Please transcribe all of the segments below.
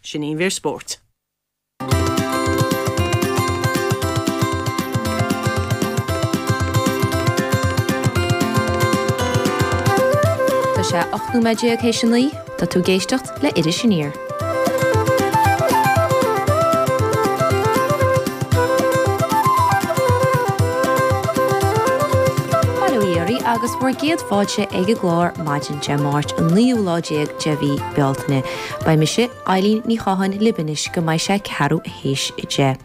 Sin í an mhír spóirt. Tá sé ocht nóiméad déag théis a naoi. Tá tú ag éisteacht le Iris Aniar. Bail ó Dhia oraibh agus bhur gcéad fáilte ag an gclár maidin Dé Máirt an naoú lá déag de mhí Bealtaine. Beidh mise, Eileen Ní Chatháin lib anois go mbeidh sé ceathrú théis deich.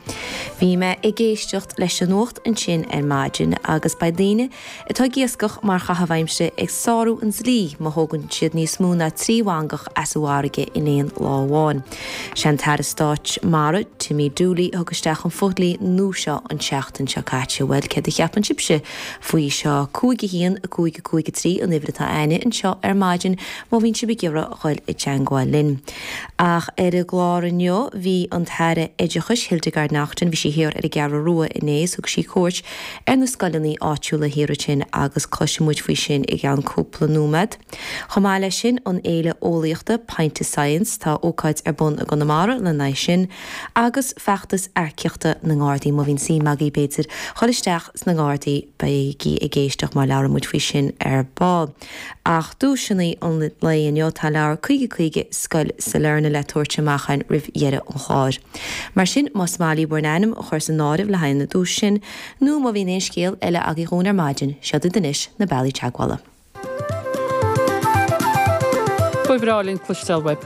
Bhí mé ag éisteacht leis an nuacht ansin ar maidin agus beidh daoine atá ag iascach mar chaitheamh aimsire ag sárú an dlí má thógann siad níos mó ná trí mhangach as an bhfarraige in aon lá amháin. Sé an tAire Stáit Mara, Timmy Dooley a thug isteach an fodhlí nua seo an tseachtain seo caite. Bhuel, céard a cheapann sibhse faoi seo? 5-1, 5-5-3 an uimhir atá againne anseo ar maidin. Má bhíonn sibh ag iarraidh a dhul i dteangmháil linn. Ach ar an gclár inniu bhí an tAire Oideachais, Hildegarde Naughton, bhí sí thiar ar an gCeathrú Rua inné is thug sí cuairt ar na scoileannaí áitiúla thiar ansin agus cloisfidh muid faoi sin i gceann cúpla nóimead. Chomh maith leis sin an fhéile eolaíochta Pint of Science, tá ócáid ar bun i gConamara lena aghaidh sin agus feachtas earcaíochta na nGardaí. Má bhíonn suim agaibh b'fhéidir dhul isteach sna nGardaí beigí ag éisteacht mar labhróidh muid faoi sin ar ball. Ach duaiseanna an lae inniu, tá leabhar 50 50, Scoil Sailearna, le tabhairt amach againn roimh dheireadh an chláir. Mar sin, más maith libh bhur n-ainm a chur san áireamh le haghaidh an duais sin, nó má bhíonn aon scéal eile agaibh ar maidin, seod iad anois na bealaí teagmhála. Ba bhreá linn cloisteáil uaibh!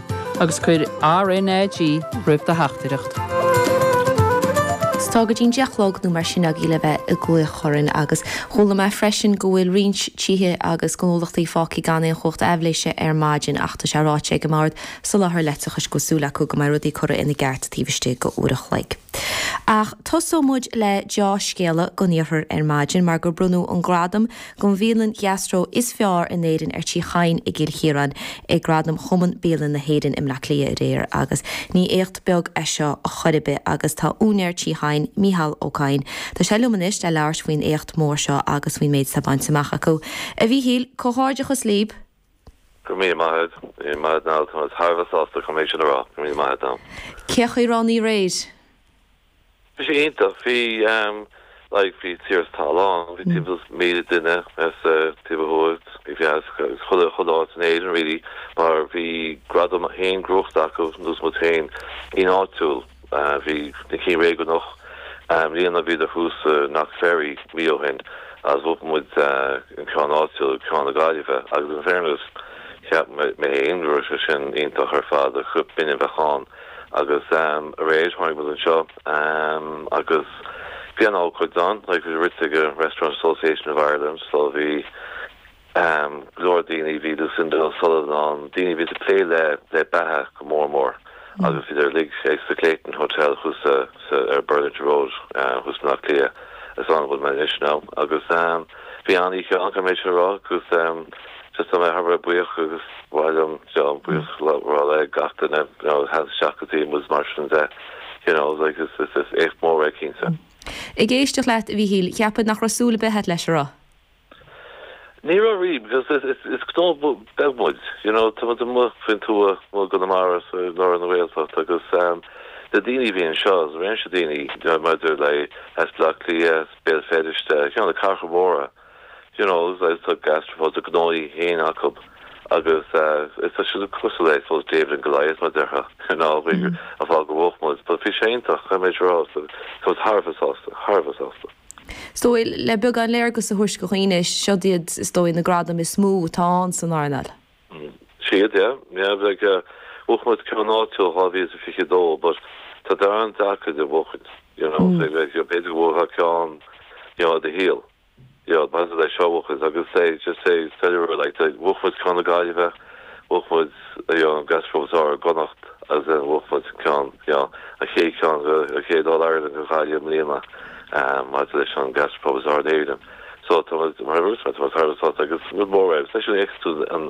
agus cuir RNAG roimh do theachtaireacht. Sea, tá go dtí an deich a chlog nó mar sin agaibh le bheith ag glaoch orainn agus chuala mé freisin go bhfuil roinnt tithe agus gnólachtaí fágtha gan aon chumhacht aibhléise ar maidin ach tá sé ráite ag an mBord Soláthar Leictreachais go bhfuil súil acu go mbeidh rudaí curtha ina gceart taobh istigh d'uair a chloig. Ach tosóidh muid le deá-scéala don iarthar ar maidin mar gur bronnadh an gradam don bhialann gastro is fearr in Éirinn ar Tí Chadhain i gCill Chiaráin ag Gradaim Chumann Bialann na hÉireann i mBleá Cliath aréir agus ní éacht beag é seo chor ar bith agus tá úinéir Tí Chadhain, Micheál Ó Cadhain, tá sé liom anois le labhairt faoin éacht mór seo agus faoin méid atá bainte amach acu. A Mhíchíl, comhghairdeachas libh! Go míle maith agat. Go míle maith agat now, tá mé thar a bheith sásta chun é sin a rá. Go míle maith agat now. Cén chaoi a raibh an oíche aréir? Bhí sé iontach. Bhí ehm like bhí tír is talamh ann, bhí timpeall is míle duine as taobh ó thuaidh, bhí fear as chuile chuile áit in Éirinn really mar bhí gradam féin gnóthaithe acu nós muid féin in áitiúil. Bhí na cinn réigiúnach i mbliana, bhíodar thuas i Knockferry mí ó shin agus bhuaigh muid an ceann áitiúil, ceann na Gaillimhe agus in fairness cheap mé féin go raibh sé sin iontach ar fad, cheap mé b'in é a bheadh ann agus aréir tháinig muid anseo agus bhí an-ócáid ann, like bhí rite ag an Restaurant Association of Ireland so bhí. go leor daoine a bhí Lucinda O'Sullivan ann, daoine a bhí ag plé le beatha go mór mór agus bhíodar uilig ag sa Clayton Hotel thuas sa ar Burlington Road thuas i mBleá Cliath is ann a bhfuil mé anois now agus bhí an-oíche ann caithfidh mé sin a rá agus just tá mé thar a bheith buíoch agus mhaith liom you know buíochas a rá le gach duine you know a thagann isteach go dtí muid mar sin de you know like is is is éacht mór é cinnte. Ag éisteacht leat a Mhíchíl, cheapfá nach raibh súil ar bith a't leis, an raibh. Ní raibh riamh, because is gnó beag muid, you know, tá muid amuigh faoin tuath, amuigh i gConamara, so i lár na Gaeltacht agus na daoine a bhí anseo, réimse daoine, you know, maidir le as Bleá Cliath, as Béal Feirste, you know, na cathracha móra, you know, agus tá gastropubs, a ngnóthaí féin acu agus tá sé cosúil le, I suppose, David and Goliath, mar a déarfá, you know, a fháil gur bhuaigh muid, but bhí sé iontach, caithfidh mé a rá, tá muid thar a bheith sásta, thar a bheith sásta. Is dóigh, le beagán léargas a thabhairt do dhaoine, siod iad is dóigh na gradaim is mó atá ann san earnáil. Siod, yeah. Like bhuaigh muid ceann áitiúil 2022 but tá siad an-deacair iad a bhuachaint, you know, so b'fhéidir go bhuafá ceann, you know, i do shaol, you know, maidir le seo a bhuachaint agus just é a cheiliúradh, like, bhuaigh muid ceann na Gaillimhe, Bhuaigh muid an gastropub is fearr i gConnacht agus then bhuaigh muid ceann, you know, an chéad ceann an chéad All Ireland go Gaillimh i mbliana maidir leis an gastropub is fearr in Éirinn. So tá muid, mar a dúirt mé, tá muid thar a bheith sásta agus rud mór é. Agus leis an X tú an